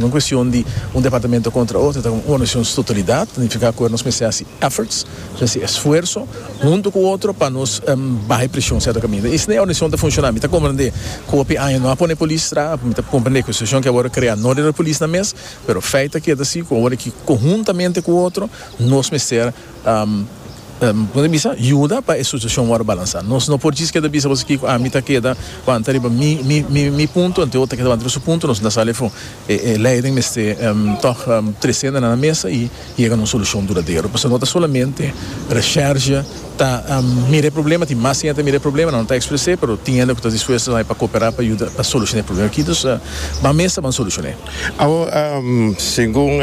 Un cuestion di un departamento contra otro ta como un organizacion stotalidad, ta nifica acuer nos mester haci efforts, nos haci esfuerzo hunto cu otro pa nos baha e presion cierto caminda. Y si na e organizacion ta funciona, mi ta comprende cu hopi aña no a pone polis straha, mi ta comprende cu e situacion que awor a crea no riba polis nan mes, pero feit ta keda si cu awor aki conhuntamente cu otro nos mester Bo ta bisa, Yuda pa e sucesión wòrdu balansá. Nos no por djis keda bisa boso kiko ami ta keda wanta riba mi mi mi punto, anto e otro ta keda wanta riba su punto, nos no ta sali afó. E e leiden mester tòg tresé nan na mesa i yega na un solushon duradero. Pasobra no ta solamente Resherge ta mira e problema, tin mas hende ta mira e problema, nan no ta expres'é, pero tin hende ku ta dispuesto pa koperá pa yuda pa solushon'é e problema akí. Dus ban mesa, ban solushon'é. Awor, segun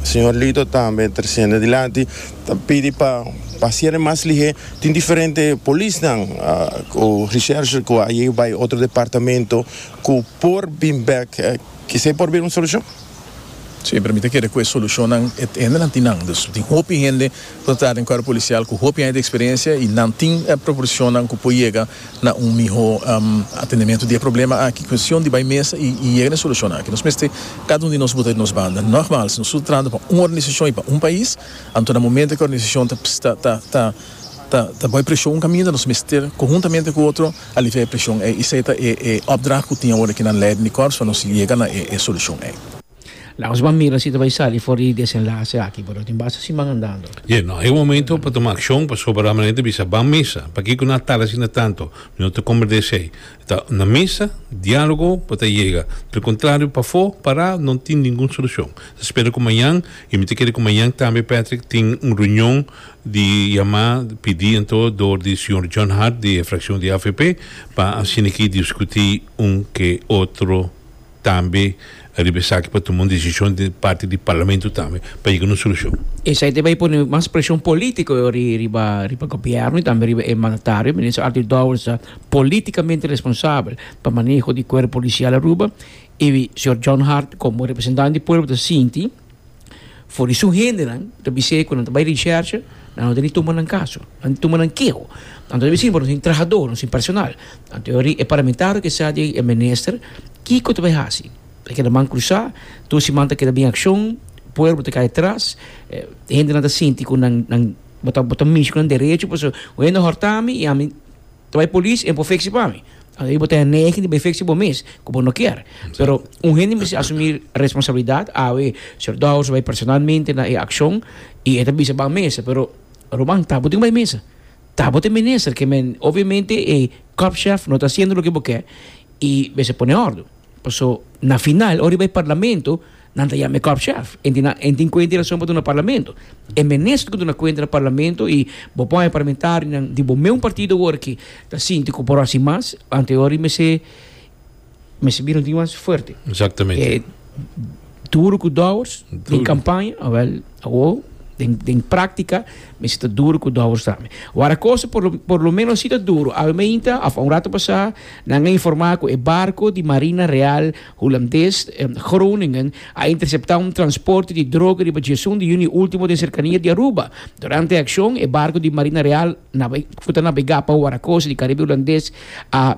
señor Lito tambe treciendo dilanti, ta pidi pa pa cierre mas lihé. Tin diferente polisnan cu recherche cu a yega bay otro departamento cu por bin bek. Kese por bira un solucion? Sí, pero mi ta kere cu e solucionnan, e hendenan tin nan. Dus tin hopi hende. Nos ta den cuerpo policial cu hopi aña di experiencia y nan tin e proporcionnan cu por yega na un miho atendimiento di e problema aki. Cuestion di bay mesa y yega na e solucionnan aki. Nos mester cada un di nos bota di nos banda. Nogmaal, si nos su ta trahando pa un organisacion y pa un pais, anto na momento e ki organisacion ta bay presion un caminda, nos mester conhuntamente cu otro alivia e presion ey. Esey ta e opdracht cu tin awor aki na leiden di corps pa nos yega na e solucion ey. Laus ban mira si ta bai sali for di desenlace aki pero tin basta siman andando. Ye no e momento pa tuma accion pasobra la mane ta bisa ban mesa pakico na tala asina tanto mi no ta comprende esey ta na mesa dialogo bo ta yega del contrario pafo para no tin ningun solucion ta spera cu mañan y mi ta kere cu mañan tambe Patrick tin un reunion di yama pidi anto door di señor John Hart di e fraccion di avp pa asiniki discuti un ke otro. tambe riba esaki pa tuma un desishon di parti di parlamento tambe pa yega na un solushon. Esei ta bay pone mas preshon polítiko riba riba gobièrnu i tambe riba e mandatario, Minister Arthur Dowers ta polítikamente responsabel pa maneho di kuerpo polisial Aruba i señor John Hart komo representant di pueblo ta sinti, For di su hendenan ta bis'é ku nan ta bai rishersha, nan no ta di tuma nan kaso, nan tuma nan keho. Nan ta debe siña por nos tin trahadó, nos tin personal. Anto yori e parlamentario ke sa di ei, e minister, kiko ta bai hasi? Ta keda man krusá, tur siman ta keda bin akshon, pueblo ta kai atras, hendenan ta sinti ku nan, nan, bo ta, bo ta mishi ku nan derecho pasobra un hende a hòrtami i ami. Tawai polis e por fiksi pa mi. Asina bo ta henegi di bay fiksi bo mes ku bo no kier. Pero un hende mester asumí responsabilidat. Awe Señor Dowers bay personalmente na e akshon i e ta bisa ban mesa. Pero Roman, ta bo tin ku bay mesa. Ta bo ta e minister ke men. Obviamente e kòpshèf no ta hasiendo loke bo ke i mester pone òrdu. Paso na final ora riba e parlamento nan ta yama e kòp chèf. E tin e tin kuenta i rason pa duna parlamento. E minister ku duna kuenta na parlamento i bo pon e parlamentarionan di bo meun partido awor ki ta sinti ku por hasi mas anto e ora i mester mester bira un tin mas fuerte. Exactamente. Duru ku dòwers den kampaña, awèl awor den den práktika mi si ta duru ku dòwers tambe. Wara kos por lo por lo ménos si ta duru. Awe mainta òf un ratu pasá nan a informá ku e barko di Marina Real Hulandes Groningen a interseptá un transporte di droga riba dje esun di yüni último den serkania di Aruba. Durante e akshon e barko di Marina Real ku ta nabegá pa Wara Kos di Karibe Hulandes a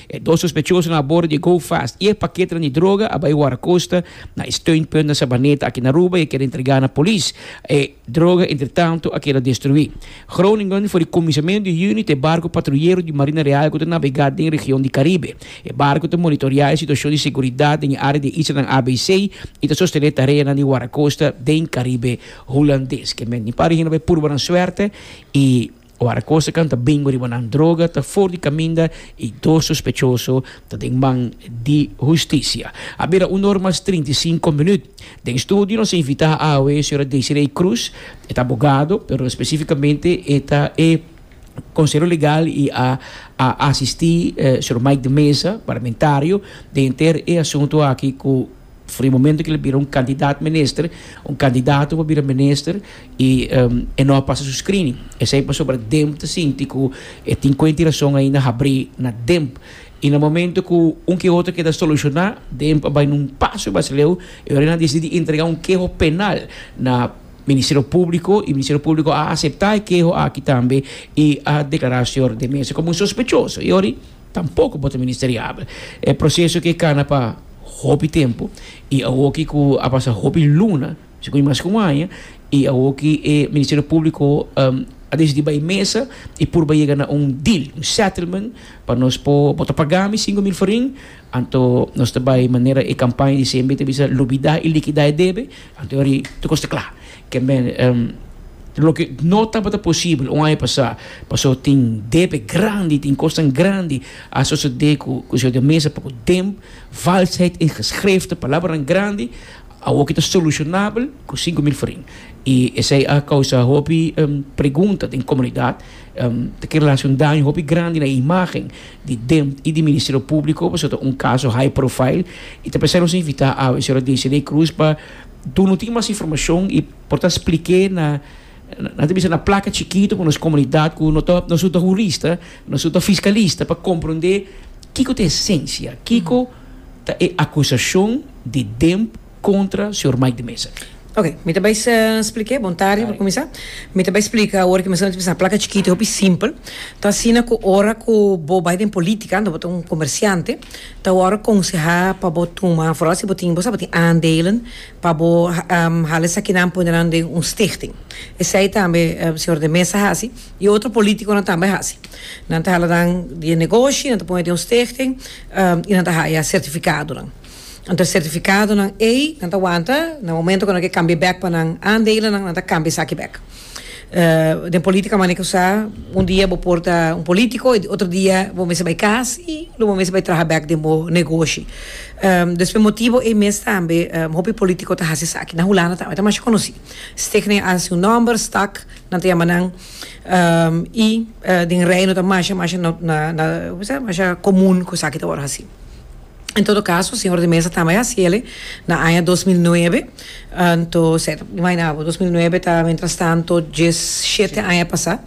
E dos sospechosonan a bordo di e go-fast y e paketenan di droga a bai wara costa na e steunpunt na Sabaneta aki na Aruba y a keda entrega na polis. E droga entretanto a keda destrui. Groningen for di kuminsamentu di Juni ta e barco patruyero di Marina Real cu ta nabega den e region di Caribe. E barco ta monitorea e situacion di seguridad den e area di e islanan ABC y ta sostene tareanan di wara costa den Caribe Hulandes. Kende tin pareheen a bai purba nan suerte y. Ora cosa can ta bingo riba nan droga ta for di caminda y dos sospechoso ta den man di husticia. A bira un or mas trinta y cinco minuut. Den studio nos a invita awe e Sra. Desiree Cruz. E ta abogado, pero specificamente e ta e conselo legal y a a asisti Sr. Mike de Meza, parlamentario, den henter e asunto aki cu. Di momento cu el a bira un candidat minister, un candidato pa bira minister y e no a pasa su screening. Esey pasobra Demp ta sinti cu e tin cuenta y razon ainda habri na Demp. Y na momento cu un ke otro keda soluciona, Demp a bay na un paso mas leu y ahora nan a dicidi di entrega un keho penal na Ministerio Publico y Ministerio Publico a acepta e keho aki tambe y a declara al señor de Meza como un sospechoso. Tampoco bo ta ministeriabel. E proceso ke kana pa hopi tempo y awoki ku a pasa hopi luna, si koe mas ke un aña, y awoki e Ministerio Publico a decidi bay mesa y purba yega na un deal, un settlement, pa nos por, bo ta paga mi sinku mil forin, anto nos ta bay manera e campaña di CNB ta bisa lubida y likida e debe, anto yori tur kos ta kla. Kende loke no tabata posibel un aña pasá, pasó tin debe grandi, tin kosnan grandi a sosodé ku Konsèu di Mesa pa ku den valsheid en geskriften, palabranan grandi, awor ke ta solushonabel ku sinku mil forin. I esei a kousa hopi pregunta den komunidat, ta kere la hasi un daño hopi grandi na e imágen di den i di Ministerio Públiko, pasobra ta un kaso high profile, i ta pensá nos invitá awe señora Desiree Cruz pa Tur no tin mas informacion y por ta spliké na, nan ta bisa na placa chikito pa nos comunidad cu no ta, no su ta hurista, no su ta fiscalista pa comprende kico ta esencia, kico ta e acusacion di Demp contra señor Mike de Meza aki. Ok, mi ta bay spliké, bon tarde pa cuminsa, mi ta bay splica awor cu mi asina, mi ta bisa na placa chikito, hopi simpel, ta asina cu ora cu bo bay den politica ando bo ta un comerciante, Ta wòrdu akonsehá pa bo tuma, foral si bo tin, bo sa bo tin aandelen, pa bo hala esakinan pone nan den un stichting. Esei tambe Señor de Meza hasi i otro polítikonan tambe hasi. Nan ta hala nan di e negoshi, nan ta pone den un stichting i nan ta haya sertifikadonan. Anto e sertifikadonan ei nan ta wanta na momento ku nan ke kambia bèk pa nan aandelen nan, nan ta kambia esaki bèk. den politica manera cu sa un dia bo por ta un politico y otro dia bo mester bay cas y lo bo mester bay traha bek den bo negoshi dus pa e motibo ey mes tambe hopi politico ta haci esaki na hulanda tambe ta masha conoci stickney a haci un nomber stuck nan ta yama nan y den reino ta masha masha na na na comun cu esaki ta word haci. En todo caso, señor de Mesa tambe a haci el'e na aña dos mil nuebe, anto se ta por imagina bo, dos mil nuebe ta mientras tanto dies shete aña pasa,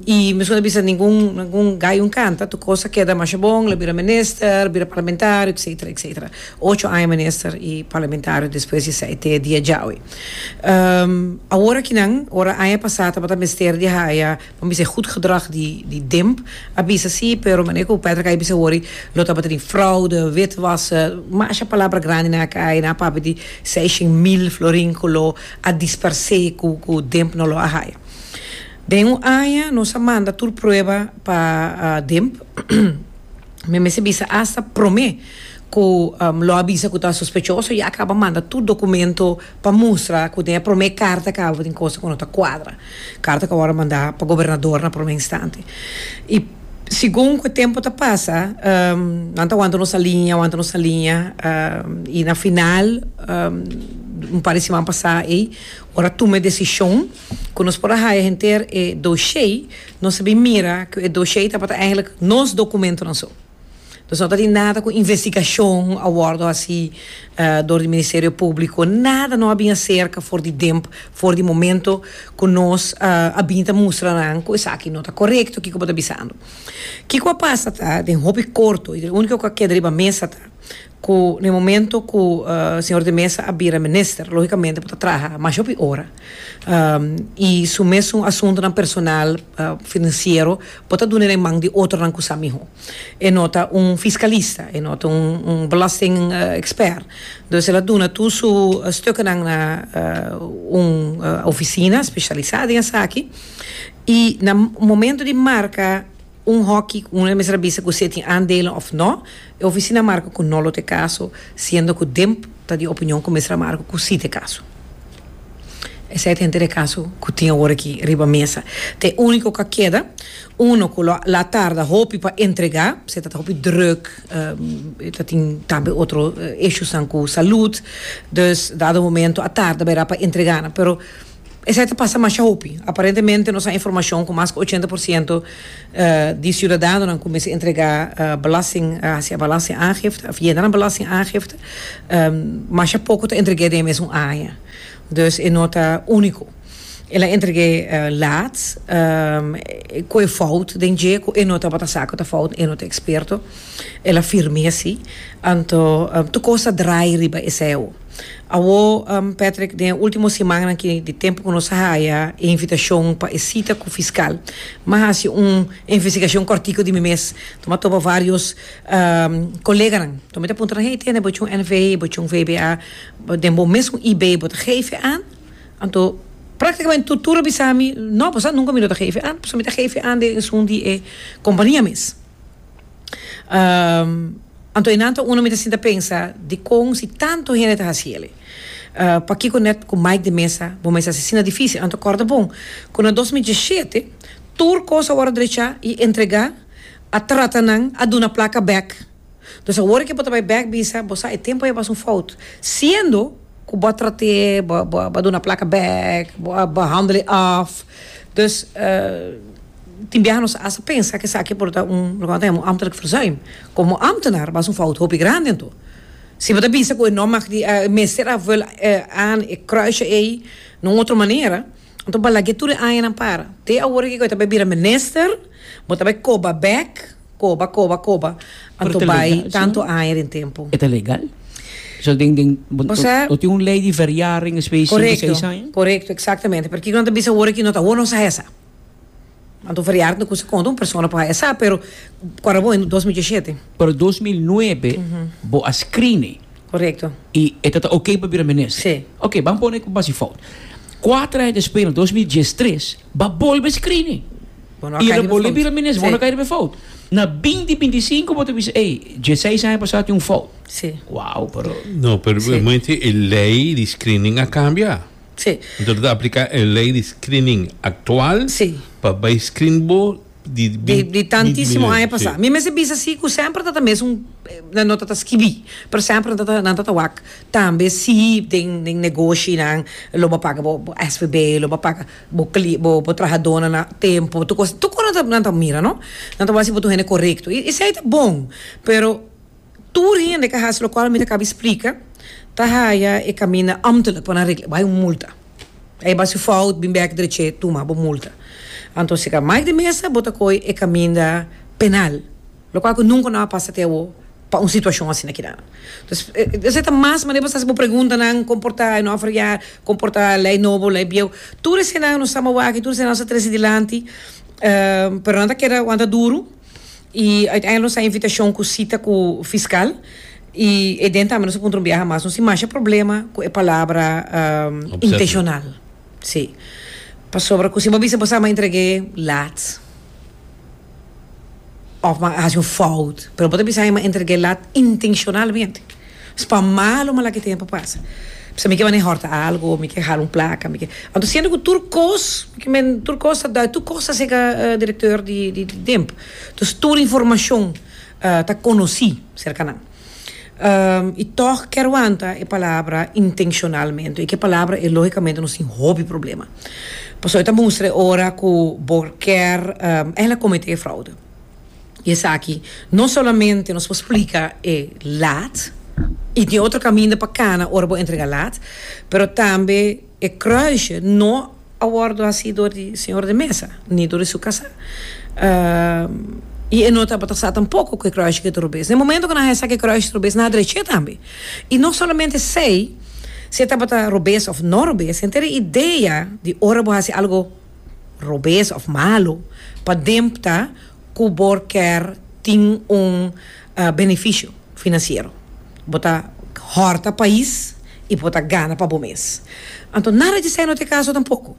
y mescu no a bisa ningun ningun gallo canta, tur cos a keda masha bon, el a bira minister, bira parlamentario, etcetera, etcetera, ocho aña minister y parlamentario despues di esai te dia djawe. Awor aki nan, ora aña pasa tabata mester di haya. Bo bisa e goed gedrag di di Demp a bisa si pero manera cu Patrick a bisa hoor lo tabata di fraude, witwassen, masha palabra grandi nan a cay nan a papia di seishen mil florin cu lo a disperse cu cu Demp no lo a haya. Den un aña nos a manda tur prueba pa Demp mi mester bisa hasta prome cu lo a bisa cu ta sospechoso ya a caba manda tur documento pa mustra cu den e prome carta cabo tin cosa cu no ta cuadra. Carta cu awor a manda pa gobernador na prome instante. Y segun cu e tempo ta pasa nan ta wanta nos alinea, wanta nos alinea y na final un par di siman pasa ey ora a tuma e decision cu nos por a haya henter e doshey nos a bin mira cu e doshey tabata eigenlijk nos documentonan so. Nos no ta tin nada cu investigacion a wordo haci door di Ministerio Publico. Nada no a bin acerca for di demp, for di momento cu nos a bin ta mustra nan cu esaki no ta corecto kico bo ta bisando. Kico a pasa ta den hopi corto y den unico cu a keda riba mesa ta. cu na e momento cu Señor de Meza a bira Minister logicamente bo ta traha mas hopi ora y su mesun asuntonan personal financiero bo ta dune na e man di otronan cu sa miho. E no ta un fiscalista, e no ta un belasting expert, dus el a duna tur su stukennan na un oficina specialisa den esaki y na momento di marca. Un hoki ku un a mester a bisa ku si e tin aandelen òf nò. E ofisina a marka ku nò lo ta e kaso, siendo ku Demp ta di opinion ku mester a marka ku si ta e kaso. Esei ta henter e kaso ku tin awor aki riba mesa. Ta e úniko ku a keda. Uno ku lo a tarda hopi pa entregá, p'esei ta ta hopi drùk, e ta tin tambe otro ishusnan ku salùt. Dus dado momento a tarda bera pa entregá nan, pero. Esei ta pasa masha hopi. Aparentemente nos a informashon ku mas ku ochenta por siento di siudadanonan ku mester entregá belasting, hasi a belasting aangifte òf yena nan belasting aangifte, masha poko ta entreg'é den e mesun aña. Dus e no ta úniko. El a entreg'é laat, ku e fout den dje ku e no tabata sa ku ta fout ni e no ta eksperto. El a firm'é asi. Anto tur kos ta drai riba esei awo. Awor, Patrick, den e ultimo simannan aki di tempu ku nos a haya e invitashon pa e sita ku fiskal, mi a hasi un investigashon kòrtiku di mi mes. Lo mi a topa vários koleganan. Lo mi ta puntra nan, Hey, tene bo chun NV, bo chun VBA, den bo mes un IB bo ta gefe an? Anto, práktikamente tur tur a bisa mi, No, pasá nunka mi lo ta gefe an, pasobra mi ta gefe an den esun di e kompania mes. Anto e nan ta uno mi ta sinta pensa dikon si tanto hende ta hasi el e. Pakiko net ku Mike di Mesa bo mester hasi asina difisil? Anto kòrda bon ku na dos mil diesshete tur kos a wòrdu drechá i entregá, a trata nan, a duna plaka bèk. Dus awor ke bo ta bai bèk bisa, bo sa e tempu ei a basa un fout, siendo ku bo a trat'é, bo a duna plaka bèk, bo a handel e af. Dus. Tin biaha nos hasta pensa cu esaki por ta un, loke nan ta yama un ambtelijk verzuim. Como ambtenaar, bas un fout hopi grandi anto. Si bo ta bisa cu e nom mag di, e mester a vul e aan, e kruisje ey, na un otro manera, anto bo a lag'e tur e añanan para. Te awor aki cu e ta bay bira minister, bo ta bay coba bek, coba, coba, coba, anto bay tanto aña den tempo. E ta legal? Bo sa, bo tin un ley di verjaring, espe di sinku, seis aña? Corecto, corecto, exactamente. Pero kico nan ta bisa awor aki, no ta awor nos a hesa. Anto variar di kusa konta un persona por haña sa, pero kòrda bo hende dos mil dieshete? Pero dos mil nuebe bo a screen'e. Korekto. I e ta ta oke pa bira minister? Sí. Oke, ban pone ku base fout. Kuater aña despues na dos mil diestres b'a bolbe screen'e. Bo no a kai riba fout. I el a bolbe bira minister, bo no a kai riba fout. Na binti binti i sinku bo ta bisa, ey, dieseis aña pasá tin un fout. Sí. Wow, pero. No, pero bo inti e lei di screening a kambia. Sí. Anto lo ta apliká e lei di screening aktual Sí. pa bai screen bo di Di bint di tantísimo mil aña lei. pasá. Sí. Mi mester bisa sí ku semper ta ta mes un nan no ta ta skibí, pero semper nan ta ta nan ta ta wak tambe sí den den negoshinan lo bo paga bo bo SVB, lo bo paga bo kli bo bo trahadonan a tempu, tur kos tur kos nan ta nan ta mira no. Nan ta wak si bo ta un hende korekto i esei ta bon, pero. Tur hende ke hasi lokual mi ta kaba splika ta haya e kaminda amtelijk pa nan regla, bay un multa. A e basi fout bin bek dreche tuma bo multa. Anto si ka maik di mesa bo ta koi e kaminda penal, lokual ku nunka no a pasa te awo pa un situashon asina kida. Entonces esei ta mas manera pa sa si bo pregunta nan kon por ta e no fria, kon por ta lei nobo, lei bieu. Tur eseinan no sa mawak i tur eseinan no sa trese dilanti, pero nan ta keda wanta duru. I uiteindelijk nos a invitacion cu cita cu fiscal y e den tambe nos a puntra un biaha mas. Nos tin masha problema cu e palabra intencional. Si. Pasobra cu si bo a bisa bo sa bo a entregue laat of bo a haci un fout pero bo ta bisa bo a entregue laat intencionalmente. Nos pa malo malaki tempo a pasa p'esei mi ke manera hòrta algu o mi ke hala un plaka mi ke anto siendo ku tur kos tur kos ta dòi tur kos ta sega direktor di di tempo tus tur informashon ta konosí serka nan i tòg ke aguanta e palabra intenshonalmente i ke palabra e lógikamente nos tin hopi problema pasobra ta mustra e ora ku bo kèr ehkila kometé fraude. I esaki no solamente nos por splika e laat, i tin otro kaminda pa kana ora bo entrega laat, pero tambe e kruisje no a wòrdu hasi dor di señor de mesa ni dor di su kasá. I e no tabata sa tampoko ku e kruisje ke ta robes. Den e momento ku nan haña sa ku e kruisje ta robes, nan a drech'é tambe. I no solamente esei, si e tabata robes òf no robes, henter e idea di ora bo hasi algu robes of malu pa dempta cu bo ker tin un beneficio financiero. Bo ta horta pais y bo ta gana pa bo mes. Anto nada dje esai no ta e caso tampoco.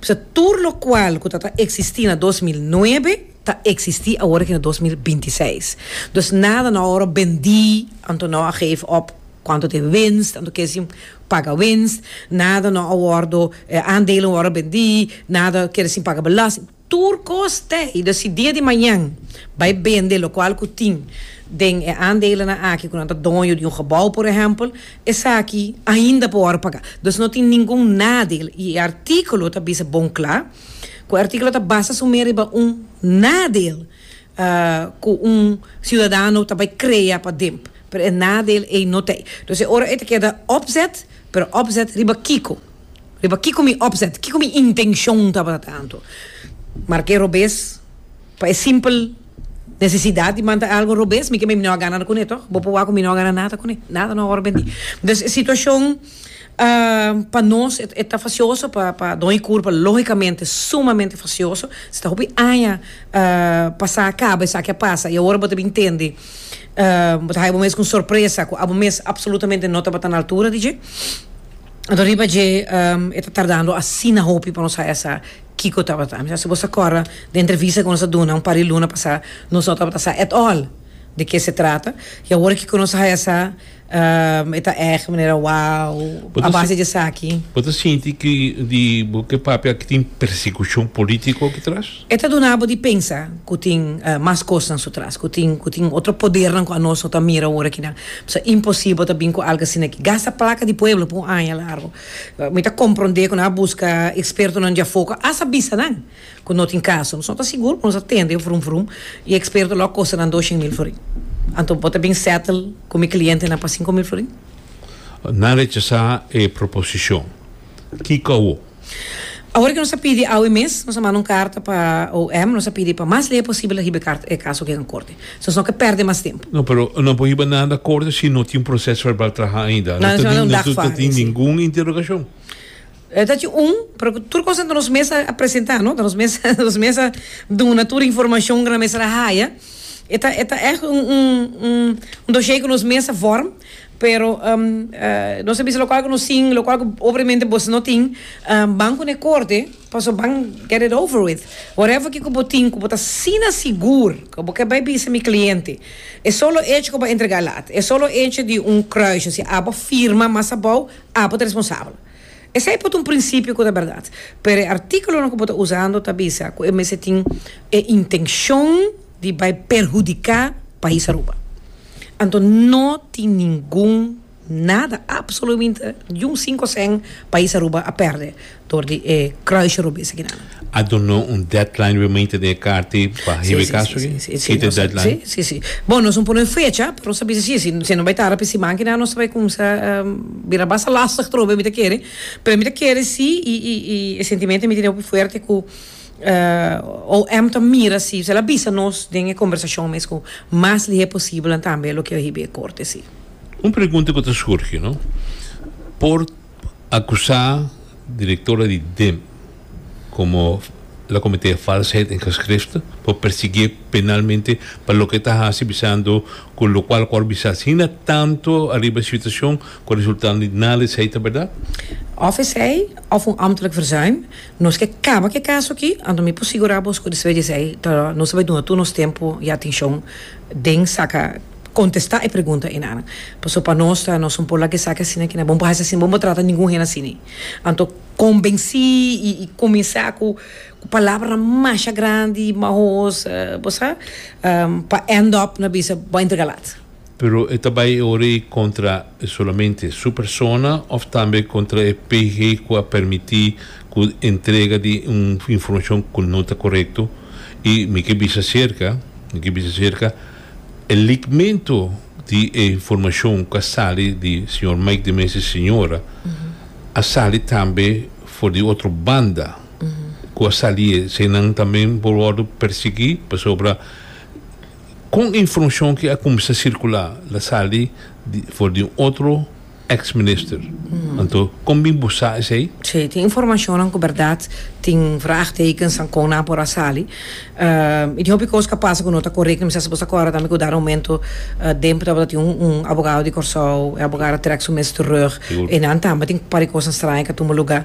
P'esa tur locual cu ta ta existi na dos mil nuebe ta existi awor aki na dos mil binti seis. Dus nada no a wor bendi, anto no a geef op cuanto ta e winst, anto quiere deci. Paga winst, nada no a wordo, e aandelen no wordo bendi, nada kier sin paga belasting. Tur kos te y dus si dia di mañan bay bende lokual ku tin den e aandelenan aki ku nan ta doño di un gebouw por ehempel, esaki ainda por wordo paga. Dus no tin ningun nadeel y e artikulo ta bisa bon kla ku e artikulo ta basa su mer riba un nadeel ku un siudadano ta bay krea pa demp. Pero e nadeel ey no ta ey. Dus e ora ey ta keda opzet, pero opzet riba kiko? Riba kiko mi opzet? Kiko mi intencion tabata tanto? Marke robes pa e simpel necesidad di manda algo robes mi keme mi no a gana nada cune toch? Bo por wak cu mi no a gana nada cune. Nada no a wor bendi. Dus e situacion pa nos e ta facioso, pa don y curpa logicamente sumamente facioso. Si ta hopi aña pasa caba esaki a pasa y awor bo ta bin tende. bo ta haya bo mes con sorpresa cu abo mes absolutamente no tabata na altura di dje. Anto riba dje e ta tardando asina hopi pa nos haya sa kico tabata. Mi sa si bo sa corda den entrevista cu nos a duna un par di luna pasa nos no tabata sa at all di ke se trata. Y awor kico nos a haya sa. Um, e ta erg manera wow Bo a ta base si- di esaki. Bo ta sinti ki di bo ke papia aki tin persekushon polítiko aki tras? E ta duna bo di pensa ku tin eh, mas kosnan su tras, ku tin ku tin otro podernan ku anos no ta mira ora akinan. Pasobra imposibel ta bin ku algu asina aki. Gasta plaka di pueblo pa un aña largu. Mi ta komprondé ku nan a buska ekspertonan di afuer ku a bisa nan. Cu no tin caso. Nos no ta sigur, pero nos a tende vrum vrum y experto lo a costa nan doshen mil florin. Anto bo ta bin settle cu mi clientenan pa cinco mil florin? Nan rechasa e proposicion. Kico awo? Awor cu nos a pidi awe mes, nos a manda un carta pa OM, nos a pidi pa mas ley posibel a hiba e caso aqui na corte. So nos no ke perde mas tempo. No, pero no por hiba nada corte si no tin proces verbal traha ainda. No tin ningun interrogacion. E ta cu un, pero cu tur cosa ta nos mes a presenta, no? Ta nos mes, ta nos mes a duna tur informacion cu nan mester a haya. E ta, e ta echt un, un, un, un doshee cu nos mes a vorm, pero nos a bisa locual cu nos tin, locual cu obremente boso no tin, ban cu ne corte, pasobra ban, get it over with. Whatever kico bo tin cu bo ta asina sigur cu bo ke bai bisa mi cliente, e solo hecho cu bo a entrega e lata, e solo hecho di un kruisje, si abo firma mas abao, abo ta responsabel. Esei por ta un prinsipio ku ta bèrdat, pero e artíkulonan ku bo ta usando ta bisa ku e mester tin e intenshon di bai perhudiká pais Aruba. Anto no tin ningun nada, apsoluminte, ni un sinku sèn pais Aruba a pèrdè dor di e kruisje robes akinan. A doná un deadline remainter den e karta pa hiba e kaso aki? Si ta deadline? Sí, sí, sí. Bon, nos no pone un fecha, pero nos ta bisa si e si no bai tara pa e siman aki nan nos ta bai cuminsa bira basta lastig trobe. Mi ta kere, pero mi ta kere si i, i, i e sentimento mi tene hopi fuerte cu OM ta mira si zel a bisa nos den e combersacion mes cu mas lihé posibel tambe loke a hiba e corte, sí. Un pregunta cu ta surgi, no? Por. Acusa directora di Demp como la comete falsheid en geschrift, por persigue penalmente pa loke ta haci bisando cu locual cu a bisa asina tanto ariba e situacion cu a resultando di nada esey ta berdad. Of esey of un ambtelijk verzuim. Nos ke caba cu e caso aki, anto mi por sigura bos cu despues di esey ta nos ta bay duna tur nos tempo y atencion den saca. contesta e pregunta enanan pasobra pa nos ta nos un por laga esaki asina kina bo no por hasi asina bo no por trata ningun hende asina e anto convenci y y comensa cu cu palabra masha grandi mahoos bo sa pa end up na bisa bo a entrega laat. Pero e ta bay e ora ey contra solamente su persona of tambe contra e PG cu a permiti cu entrega di un informacion cu no ta corecto y mi ke bisa cerca mi ke bisa cerca E ligmento di e informashon ku a sali di señor Mike de Mesa i señora a sali tambe for di otro banda ku a sali esei nan tambe por wòrdu persiguí pasobra kon e informashon ki a kuminsá sirkulá la sali for di un otro ex minister. Anto kon bin bo sa esei? Sí, tin informacionnan cu berdad tin vraagtekens an con nan por a sali. Y tin hopi cos cu a pasa cu no ta corect. Mi sa si bo ta acorda tambe cu dado momento den por tabata tin un abogado di Corsou, e abogado a trek su mes terug. Y nan tambe tin par di cosnan straña cu a tumba lugar.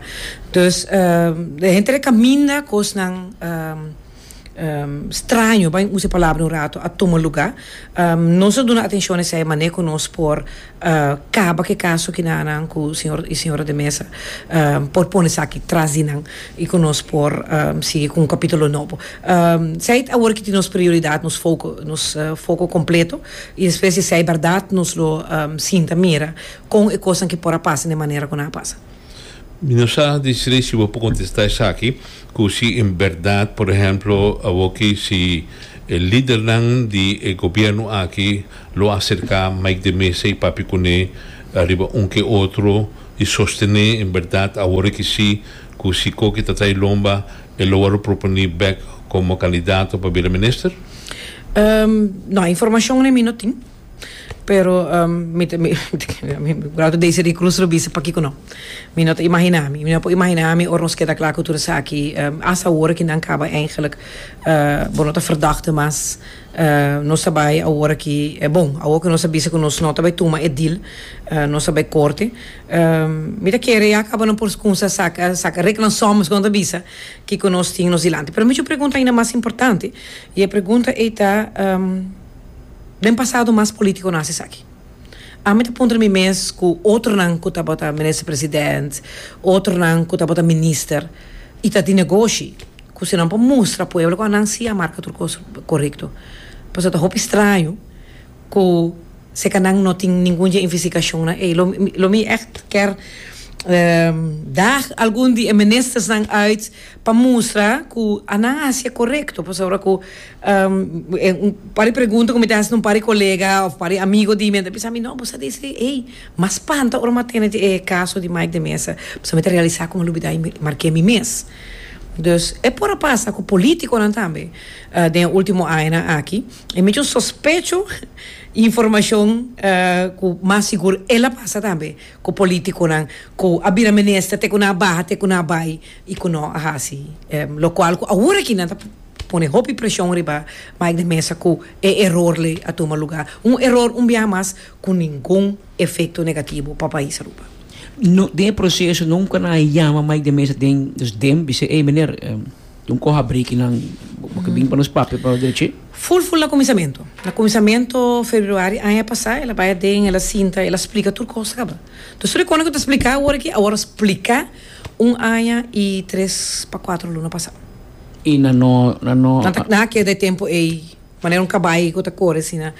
Dus e henter a caminda cosnan. straño, bay usa e palabra un rato, a tuma lugá. Nos a duna atenshon esei mané ku nos por kaba ku e kaso ki nannan ku señor i señora de mesa por pone esaki tras di nan i ku nos por sigui ku un kapítulo nobo. Esei ta awor ki tin nos prioridat, nos foko, nos foko kompleto i despues di esei bèrdat nos lo sinta mira kon e kosnan ki por a pasa den manera ku nan a pasa. Mi no sa di sri si bo por contesta esaki cu si en berdad por ehemplo awoki si e lidernan di e gobierno aki lo acerca Mike de Meza y papia cune ariba un ke otro y sostene en berdad awor ki si cu si Coki ta trae lomba e lo wou lo proponi bek como candidato pa bira minister? No, e informacionnan mi no tin. Pero mi ta mi grado de ese rincruz lo bisa pakico no mi no ta imagina mi mi no por imagina mi ora nos keda cla cu tur esaki as awor aki nan caba eindelijk bo no ta verdachte mas nos ta bay awor aki bon awor cu nos a bisa cu nos no ta bay tuma e deal nos ta bay corte mi ta kere ya caba nan por cunsa saca saca reg nan somos como nan ta bisa kico nos tin nos dilanti pero mi chu pregunta aina mas importante y e pregunta ey ta. Den pasado mas politiconan haci esaki. Ami ta puntra mi mes cu otronan cu tabata Minister President, otronan cu tabata Minister y ta di negoshi cu si nan por mustra pueblo cu anan si a marca tur cos corecto. Pasobra ta hopi straño cu seca nan no tin ningun dje investigacion na ey. Lo lo mi echt kier daag algun di e Ministersnan uit Pa mustra cu a nan haci e corecto, pasobra cu un par di pregunta cu mi ta haci na un par di colega of par di amigo di mi, nan ta bisa mi, no, bo sa di esei, ey, mas spanta ora mi a tene e caso di Mike de Mesa, pasobra mi ta realisa cu mi a lubida y mi marke mi mes. Dus, e por a pasa cu politiconan tambe den e ultimo añanan aki, y mi tin sospecho y informacion cu mas sigur el a pasa tambe cu politiconan cu a bira minister te cu nan a baha, te cu nan a bay. y cu no a haci locual cu ahora aki nan ta pone hopi presion riba Mike de Meza cu e error ley a tuma lugar, un error un biaha mas cu ningun efecto negativo pa pais Aruba. No, den e proceso nunca nan a yama Mike de Meza den nos dem bis'e ey meneer tin coha brekinan bo ta bin pa nos papia pa nos derechi? Full full na cuminsamentu, na cuminsamentu Februari aña pasa el a bay aden el a sinta el a splica tur cos ta caba, entonces tur e cosnan cu ta splica awor aki awor a splica. Un aña y tres pa cuatro luna pasa. Y nan no, nan no. Nan ta, nan a keda e tempo ey, manera un cabai cu ta core asina,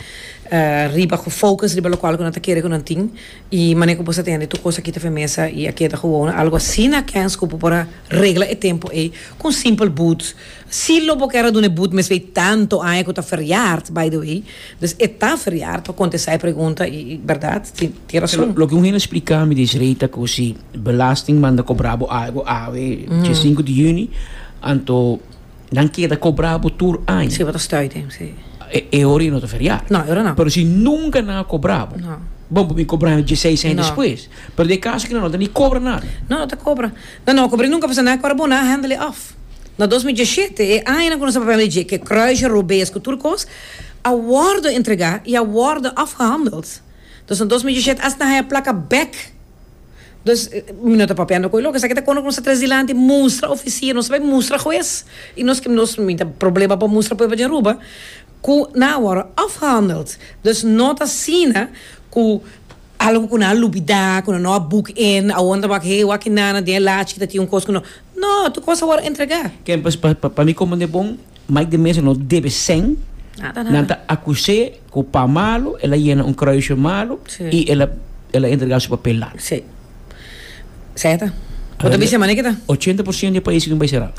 riba, cu focus riba locual cu nan ta kere cu nan tin, y manera cu bo sa tende tur cos aki ta firmesa y a keda gowona, algo asina, Kens, cu bo por a regla e tempo ey cu un simple boots. Si lo bo kèra duna e but mes bay tanto aña ku ta feriard, by the way, dus e ta feriard pa kontestá e pregunta i bèrdat tin tin rason. Loke un hende a spliká mi des rei ta ku si belasting manda kobrá bo algu awe dje sinku di yüni anto nan keda kobrá bo tur aña. Si bo ta stùde, si. E ora ya no ta feriard. No, e ora no. Pero si nunka nan a kobrá bo. No. Bon por mi kobrá mi dje seis aña despues. No. Pero den e kaso ku nan no ta ni kobra nada. No, no ta kobra. Nan no a kobra i nunka a pasa nada ku ora bo nan a handle off. Na dos mil diesete, e aña nan ku nos a papia lege ke kruisje, robees ku tur kos a wòrdu entregá i a wòrdu afgehandeld. Dus na dos mil diesete asta nan haya plaka bek. Dus, mi no ta papiando ku e lo. Esaki ta kono ku nos ta tres dilanti mustra ofisia, nos ta bai mustra hues i nos ke nos mi ta problema pa mustra pueblo di Aruba ku nan a wòrdu afgehandeld. Dus no ta asina ku algu ku nan a lubidá, ku nan no a boek in, awor nan ta wak he wak e nana den e lachi ta tin un kos ku no. No, tu cos a worde entrega. Ken pues pa mi como ne bon Mike de Meza no debe seng nada nada nan ta acuse cu pa malo el a yena un kruisje malo y el a el a entrega su papel la. Sí. Sea ta. Bo ta bisa manera ki ta. Ochenta por ciento di e pais aquí no bai sera.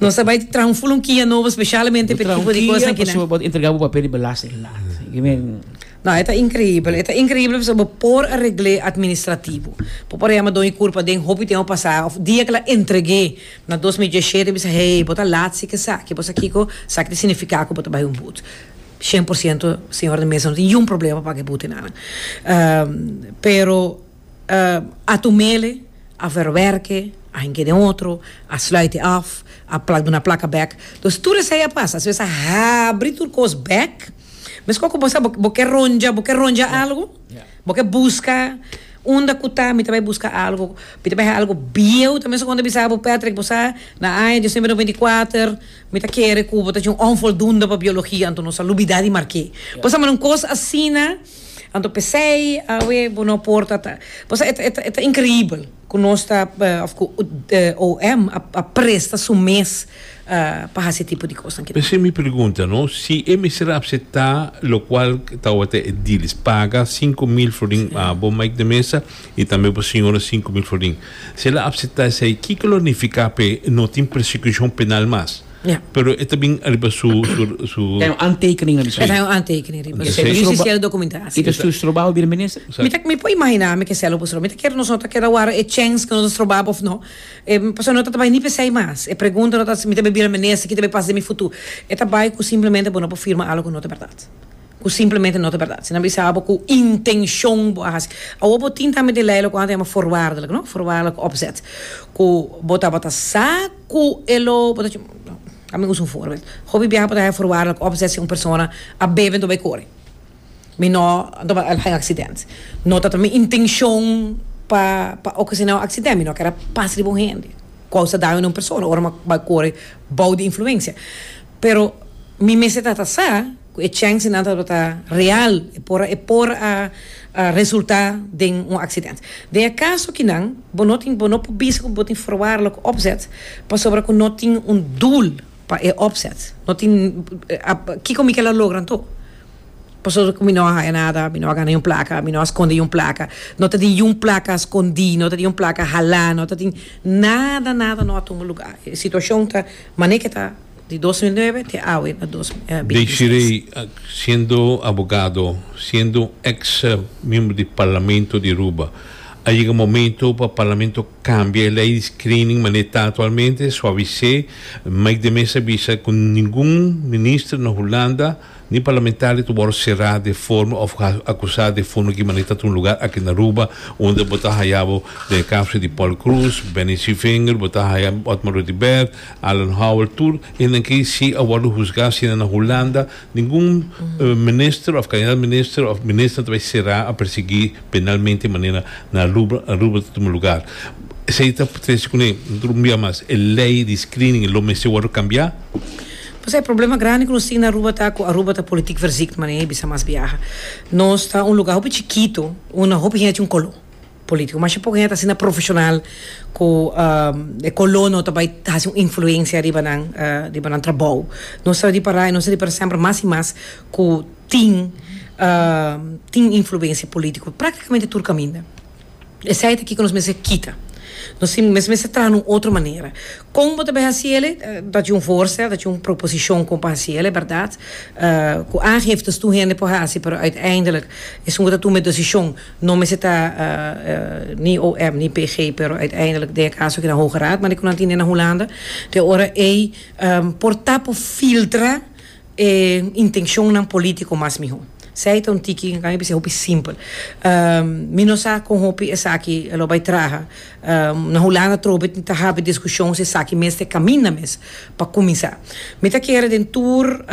Nos ta bai traha un fulunkia nobo specialmente pa e tipo di cosnan kinan. Bo ta entrega bo papel di belasting la. No, e ta increíbel. E ta increíbel pasobra bo por a regl'é administrativo. Bo por a yama Don y Curpa den hopi tempo pasá of dia k'el a entreg'é na dos mi dieshete a bisa, Hey, bo ta lat si k'esaki, bo sa kiko? Esaki ta significá ku bo ta bai un but. Shen por siento, señor di mesa, no tin yun problema pa paga e butenan. Pero. a tumele, a verwerke, a henge den otro, a sluite af, a pla duna plaka bek. Dus tur esei a pasa, si mes a habri tur kos bek, meskos ku bo sa bo ke rondja, bo ke rondja algu, bo ke buska, unda ku ta mi ta bai buska algu, mi ta bai haal algu bieu ta, meskos bo ta bisa bo Patrick bo sa na aña dies nuebe noventa i kuater mi ta kere ku bo ta dje un onvoldoende pa biologia, anto nos a lubida di marke. Bo sa, ma un kos asina. Anto p'esei awe bo no por ta ta. Pasobra e ta e ta inkrihibel ku nos ta òf ku OM a presta su mes pa hasi e tipo di kosnan kinan. P'esei mi pregunta no, si e mester a apseptá lokual tawata ediles paga sinku mil florin a bo Mike de Mesa i tambe bo siñora sinku mil florin, si el a apseptá esei kiko lo nifiká p'e no tin persekushon penal mas? Pero e ta bin riba su, su, su. Ta yon antekening na bispera. Ta yon antekening riba su. Yu si sel dokumentasio. I ta su strobaal di minister. Mi ta, mi por imaginá mi ke selo por stroba. Mi ta kere nos no ta keda wara e chèns ku nos a stroba òf no. E pasobra no ta ta bai ni pe esei mas. E pregunta no ta mi ta bira minister ki ta bai pas den mi futu. E ta bai ku simplemente bo no por firma algu ku no ta bèrdat. Ku simplemente no ta bèrdat. Si nan bisa bo ku intenshon bo a hasi. Awor bo tin tambe den lei loke bo a yama forwaardelijk no, voorwaardelijk opzet, ku bo tabata sa. Cu e lo Hopi biaha bo ta haña forwaardelijk opzet si un persona a bebe anto bay core. Mi no anto bay haña accident. No ta ta mi intencion pa pa ocasiona un accident. Mi no ker a pasa riba un hende. Causa daño na un persona ora mi a bay core bou di influencia. Pero mi mester trata sa. ku e chancenan tabata real e por a resulta den un accident. Den e caso akinan bo no tin bo no por bisa ku bo tin forwarlo ku opzet pasobra ku no tin un doel pa e opzet no tin kiko mi kel a logra anto pasobra ku mi no a haya nada mi no a gana yun plaka mi no a skonde yun plaka no ta tin yun plaka a skondi no ta tin yun plaka hala no ta tin nada nada no a tuma lugar e situacion ta mane ke ta. Di dos mil nuebe te awe na dos mil binti seis. Desiree, siendo abogado, siendo ex miembro di Parlamento di Aruba, a yega momento pa Parlamento cambia e ley di screening manera ta actualmente, suavis'é, make de mesa bisa cu ningun minister na Hulanda Ni parlamentario ta wòrdu será de forma òf akusá de fundo ki manera ta ta un lugar aki na Aruba unda bo ta haya bo den e kaso di Paul Croes, Benny Swivinger, bo ta haya Otmar Rudibert, Alan Howell, tur esnan aki si a wòrdu husgá asina na Hulanda, ningun minister òf kandidat minister òf minister ta bai será a persiguí penalmente manera na Aruba Aruba ta tuma lugar. Esei ta trece kuné, tur un bia mas, e lei di screening lo mester wòrdu kambiá? Pasá e problema grandi ku nos tin na Aruba ta ku Aruba ta politik verziekt manera e bisa mas biaha. Nos ta un lugá hopi chikitu unda hopi hende ta un koló polítiko. Masha poko hende ta asina profeshonal ku e koló no ta bai hasi un influensia riba nan riba nan trabou. Nos ta ripará i nos ta ripará semper mas i mas ku tin tin influensia polítiko praktikamente tur kaminda. Esei ta kiko nos mester kita. Nos mester traha na un otro manera. Kon bo ta bai hasi el? Ta tjin un voorstel, ta tjin un proposicion kon pa hasi el, e berdad ku aangiftes tur hende por hasi, pero uiteindelijk esun ku ta tuma e desishon no mester ta ni OM ni PG, pero uiteindelijk den e kaso aki na Hoge Raad, manera ku nan tin den na Hulanda. Te ora ei por ta por filtra. e intencionnan politico mas miho. Sei ta un tiki nan a bisa hopi simpel. Mi no sa con hopi esaki lo bay traha. Na Hulanda trobe tin ta habi discusion si esaki mes ta e caminda mes pa cuminsa. Mi ta kere den tur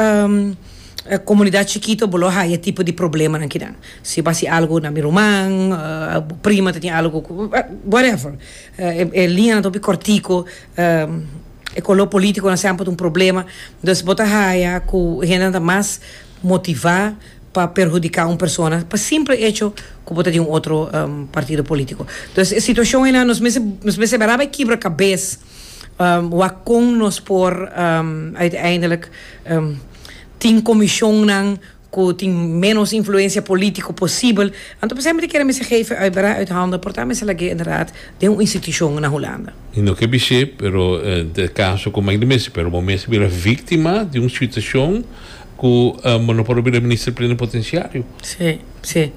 comunidad chikito bo lo haya e tipo di problemanan kinan. Si bo hasi algo na mi ruman, bo prima ta tin algo cu, whatever. E liñanan ta hopi kòrtiku. E koló polítikunan semper ta un problema. Dus bo ta haña ku hendenan ta mas motivá pa perhudiká un persona pa simpel echo ku bo ta di un otro partido polítiku. Dus e situashon einan nos mester nos mester bira bai kibra kabes wak kon nos por uiteindelik tin komishonnan. cu tin menos influencia politico posibel, anto por semper tin kere mester geven uit bera uit handen por ta mester lag'é inderdaad den un institucion na Hulanda. I no ke bis'é, pero te caso cu Mike di Mesi, pero bo mes a bira victima di un situacion cu bo no por a bira Minister Plenipotenciario. Sí, sí.